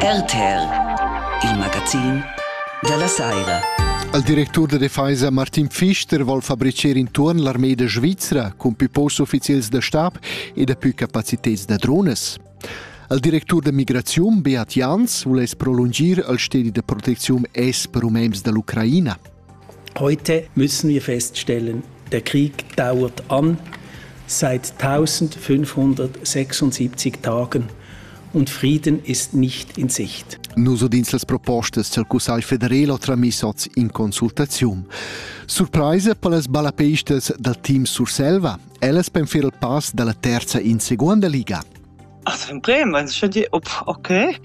RTL, il magazin dalla saira. Il directur da defesa Martin Pfister vol fabricer intuorn l'armeda svizra cun più posts ufficials da stab e da più capacitets da drones. Il directur da migraziun Beat Jans vuless prolungir il stedi da protecziun es per umems dall'Ucraina. Heute müssen wir feststellen, der Krieg dauert an seit 1576 Tagen und Frieden ist nicht in Sicht. Nus udins las propostas dal Cussagl federal tramiss oz in consultaziun. Surpraisa per las balapeistas dal team Surselva, ellas penfer il pass dalla terza in seconda liga. As fa emprema inscha dir okay,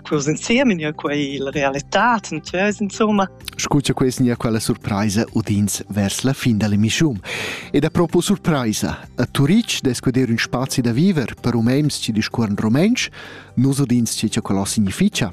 quaus insiem gnir quai la realità tantös insumma. Scu cha quai gnir quella surpraisa udins vers la fin da l'emischiun. Ed apropo surpraisa, a Turic dess guder ün spazi da viver per umens chi discuorran rumentsch, nus udins chi cha quellò significha.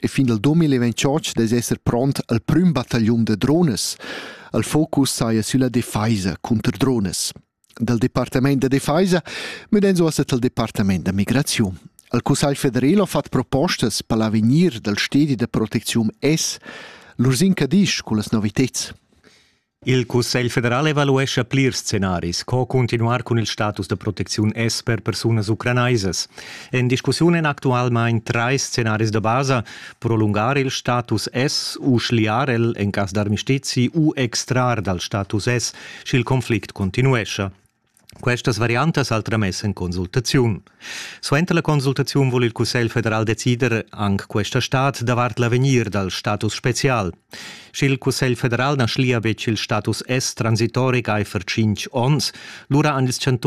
e fin al 2028 dess esser pront al prüm battagliun da drones. Il focus saja sülla defaisa cunter drones. Dal Departament da Defaisa müden zuossa tal Departament da Migraziun. Il Cussagl federal ha fatto propostas per l'avegnir dal stedi da protezione S, l'Ursin Cadisch con las noviteds. Il Cussegl federal evaluescha plirs scenaris, co cuntinuar cun il status da protecziun S per persunas ucranaisas. En discussiun èn actualmain trais scenaris da basa, prolungar il status S u schliar el en cas d'armistizi u extrar dal status S, sch'il conflict continuescha. Questas variantas al tramess en consultaziun. Suenter la consultaziun vul il Cussegl federal decider anc questa stad davart l'avegnir dal status spezial. Sch'il Cussegl federal na schlia betg il status S transitoric aifer tschintg onns, lura han ils chantuns